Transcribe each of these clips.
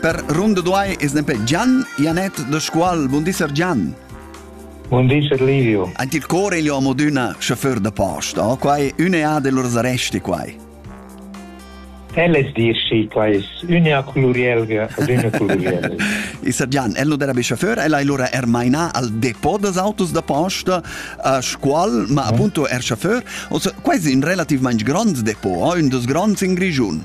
Per ronda duai es nempe Gian Janet da Scuol. Buon di, Sir Gian. Buon di, Sir Livio. Ant il core gli uomo d'una chauffeur da posta, oh? quai un'ea de lors arresti quai. Elles dirschi, qua es unea culurielga ad unea culurielga. I Sir Gian, el non era be chauffeur, el ha allora er maina al depot des autos da posta a Scuol, ma appunto er chauffeur. Also, quai es in relativament grand depot, oh? un dos grands in Grigiun.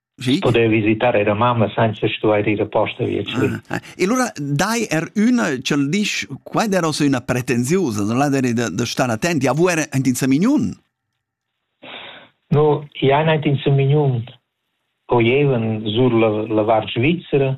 Sì. poder visitar era mamma senza stuer ir apposta vietschli. Ah, e allora dai er una ch'el disch qua era so una pretensiusa, non la deri da, da star attenti, a vuere ein in Samignun? No, ja ein in Samignun o jeven sur la, la Var Svizzera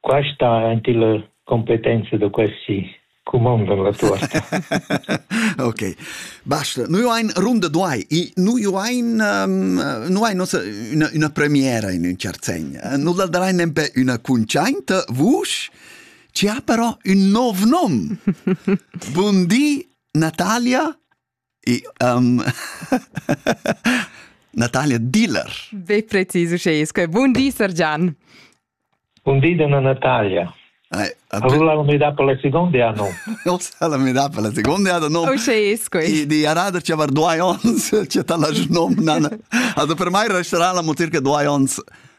Qua sta aint illa competenza da questi cumandan la tuorta. ok. Basta. Noi ein runda duai. I noi ein um, noi ein nossa una, una premiera in un certo sen. Noi la darai nempe una cunciainta vusch. Ci ha però un nov nom. Buondì, Natalia E, um, Natalia Diller. Be precis uschè, sco bun di, Sir Gian. Bun di, donna Natalia. Ai, Avula la metà per la seconda anno. Ossa la metà per la seconda anno. No. Uschè, sco. Di, di arada ci aver due ons, c'è tala nom, nana. Also per mai resterà la motir che due ons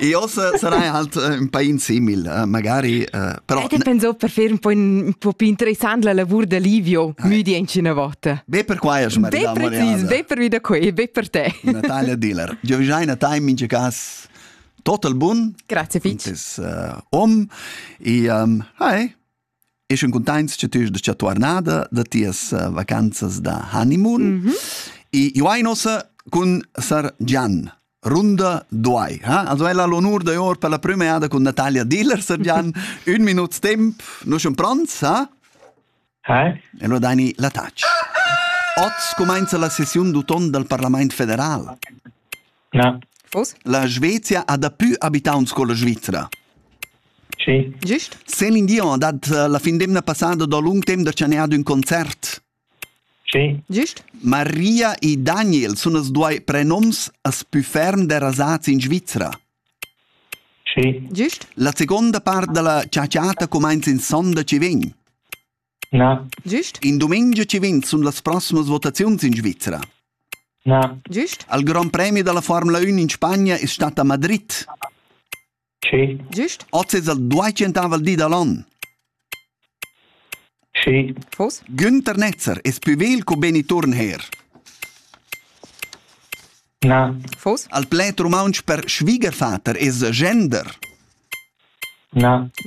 Io sarei halt äh, un pain simil, äh, magari, äh, però... E pensò per fare un po', un po più interessante la lavor de Livio, eh. müdi una volta. Be per qua, Maria Be be per vida qui, be per te. Natalia Diller. Io vi già in time, in ce cas, total bun. Grazie, Fitch. Un om. E, um, hi. Eschan cuntaints cha tü ast tuornada da tias eh, vacanzas da honeymoon. Mm -hmm. E io hai nossa cun Sar Gian. Runda Duai. Ha? Also ella l'onur da or per la prima jada con Natalia Diller, Sir Gian. Un minut temp, noi siamo pronti, ha? Hi. E allora dai la touch. Oz comincia la sessione d'uton dal Parlament federal. Na. Vos? La Svezia ha dapü abitaunt sco la Svizra. Sì. Gist? Celine Dion ha dat eh, la fin d'emna passada da lung temp da chanar ün concert. Sì. Gist? Maria e Daniel sun as duai prenoms as pü ferm derasats in Svizra. Sì. Gist? La seconda part da la ciaciata cumainza in sonda chi vegn. Na. Giust? In dumengia ci vegn sun las proximas votaziuns in Svizra. Na. Giust? Al Grand Premi dalla Formula 1 in Spagna es stat a Madrid. Sì. Giust? Oz es al duecentavel di da l'on. Sì. Fuß? Günther Netzer es pü vegl co Benny Turnherr. Al pled rumauntsch per schwiegervater es gender.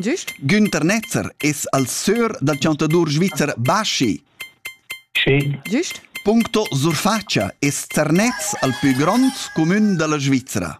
Giust? Günther Netzer es al sör dal chantadur svizzer Baschi. Giust? Puncto surfatscha es Zernez al pü grond cumün da la Svizra.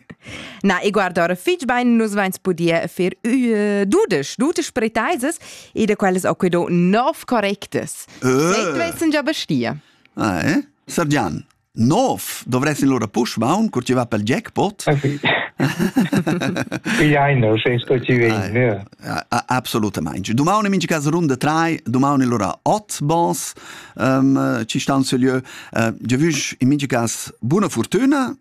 Na, e guarda, ora fitg bain nus vains pudia fer uh, dudesch, dudesch pretaisas e da quellas ho quedò nov correctas. Uh. Se vessan già bestia. Ah, eh? Sergian, nov dovresti lura push maun cur ti va pel jackpot? Pigliaino, se sto ci vegni. Absolutamente. Domani in casa runde 3, domani lura 8 bons um, ci stanno su lieu. Uh, je vush in mingi cas buona fortuna